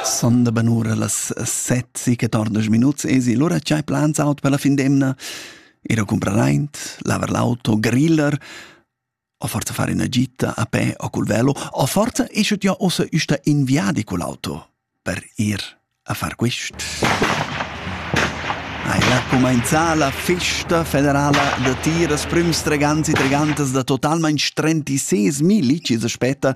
Sonda benura las sezzi che tornas minuts esi lura tgei plans aut per la fin d'emna? Ir a comprar aint, lavar l'auto, griller, o forza fare una gita a pe o col velo, o forza esce ja ossa usta inviadi col auto per ir a far quist. Hai la comenzà la festa federala da tiras prüms treganzi tregantas da totalmain 36.000 licis aspetta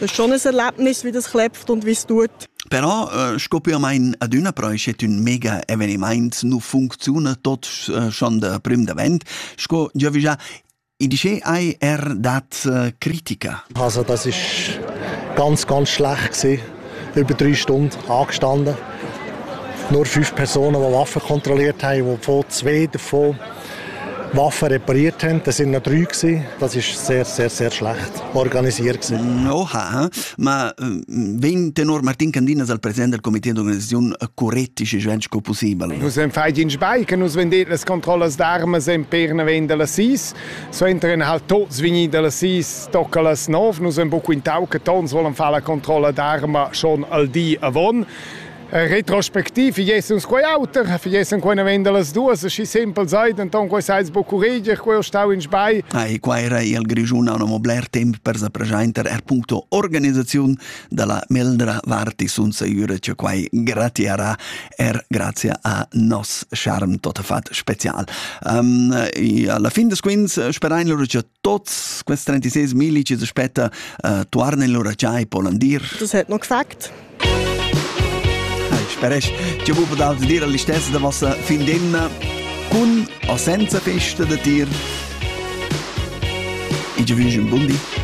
Das ist schon ein Erlebnis, wie das klebt und wie es tut. Però äh, scopiamain adüna però es ün mega evenimaint, nu funcziuna tot äh, schon da prüm davent, sco Giovi già in dice hai er dat äh, Kritika? Also das ist ganz, ganz schlecht gewesen. Über drei Stunden angestanden. Nur fünf Personen, die Waffen kontrolliert haben, die von zwei davon Waffen repariert haben, das sind noch drei gewesen. Das ist sehr, sehr, sehr schlecht organisiert gewesen. Oha, ma wenn tenor Martin Candinas al President del Comité d'organisazione correttische Schwensch co possibel? Nus en fai in Speiche, nus vendet las controllas d'armas en per ne ven della sis, so entren halt tot svini della sis, tocca las nov, nus en buco in tau che tons vollen fare la controlla d'arma schon al di avon. Eh, retrospectiv, ich esse uns quei auter, ich esse quei na venda las duas, aschi simpel sei, denton quei seis bo curreger, quei stau in sbai. Ah, e quai era il Grigiuna un obler temp per sa presenter er punto organizzaziun dalla Meldra Varti sunza Jure, che quai gratiara er grazie a nos charm totafat special. Um, alla fin des quins sperein loro che Tots quels 36 millici aspetta uh, tuarn in lura già e polan dir. Das hat noch gesagt. Speresch, ti bu podal dir all'istessa da vossa fin d'emna cun o senza festa da tir. Ich wünsche un buon Di.